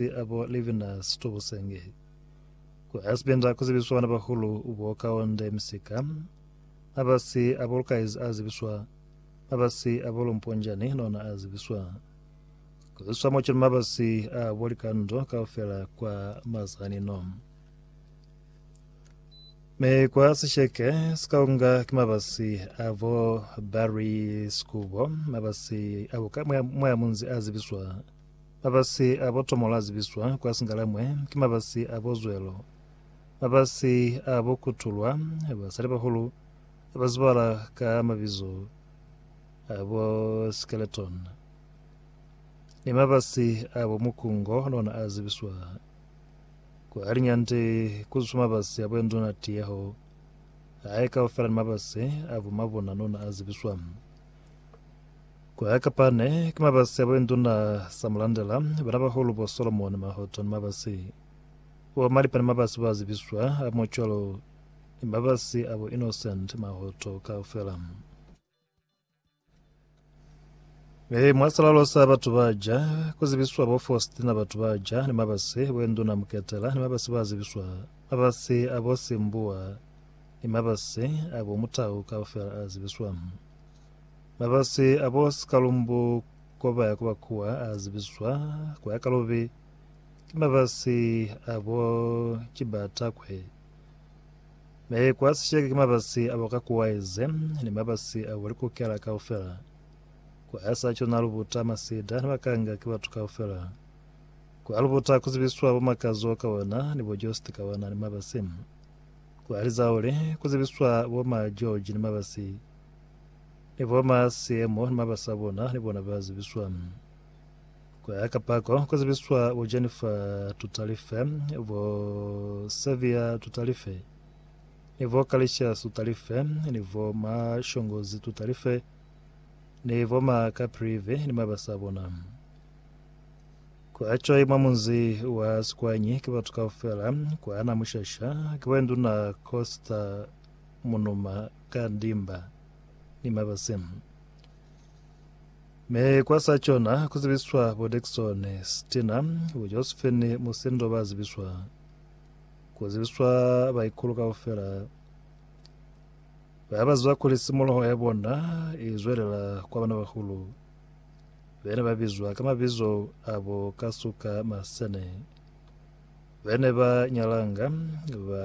Mezi a bo livina situbu senge. Ku Asbinda ku zibiswa bana bahulu bo kaonde misika. Mabasi a bo Lukaizi a zibiswa. Mabasi a bo Lumponjani nona a zibiswa. Ku zibiswa mo cwalo mabasi a bo Likando kaufela kwa mazanino. Me kwa sisheke sikaunga ki mabasi a bo Barry Skubo. Mabasi a bo ka mwa munzi a zibiswa. Mabasi a bo Tomolo a zibiswa kwa Singalemwe ki mabasi a bo Zwelo, mabasi a bo Kutulwa, basalibahulu ba zibala ka mabizo a bo Skeleton, ni mabasi a bo Mukungo nona a zibiswa. Kwa liñande ku zwiswa mabasi a bo Enduna Tiyeho, hae kaufela ni mabasi a bo Mabuna nona a zibiswa. Ku ya ka Pane, ki mabasi a buinduna sa mulandela banabahulu bo Solomoni, Mahoto ni mabasi. Bo Malipa ni mabasi ba zibiswa a mo cwalo ni mabasi a bo Innocent, Mahoto kaufela. Mi mwa salalo sa batu ba ja, ku zibiswa bo Faustina batu ba ja ni mabasi, buinduna Muketela ni mabasi ba zibiswa, mabasi a bo Simbuwa ni mabasi a bo Mutau kaufela a zibiswa. Mabasi a bo Sikalumbu ko ba ya ku ba kuwa a zibizwa ku ya ka lubi, ki mabasi a bo Kibatakwe. Me kwa sisheke ki mabasi a bo Kakuwaize ni mabasi a bo Likukela kaufela. Kwa ya sa cona Lubuta, Masida ni Makanga ki batu kaufela. Kwa Lubuta ku zibiswa bo Makazo ka ona ni bo Jost ka ona ni mabasi. Kwa Lizaule ku zibiswa bo Ma George ni mabasi. Niboma siemo ni mabasi abona nibona ba zibiswa. Kuya ka pako ku zibiswa bo Jennifer Tutalife, bo Saviour Tutalife, ni bo Kalicious Tutalife, ni bo ma Shongozi Tutalife, ni bo ma Kaprivi ni mabasi abona. Kwa choi mwa munzi wa Sikwanyi ki batu kaufela, kwa na Mushasha, ki bo Induna Costa Munuma ka ndimba ni mabasi, mi kwa sa cona ku zibiswa bo Dickson Stina, bo Josephine Musindo ba zibiswa, ku zibiswa baikulu kaufela ba ba zwa kuli simuloho ya bona i zwelela kwa bana bahulu be ne ba bizwa ka mabizo abo ka suka masene be ne ba nyalanga ba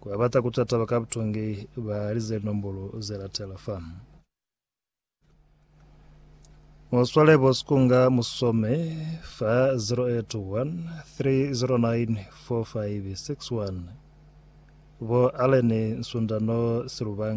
Ku babata ku twa taba ka butongi, balize linombolo ze latela fa. Mu swale bo sikunga mu some fa 081 309 4561 bo Allen Nsundano Silubanga.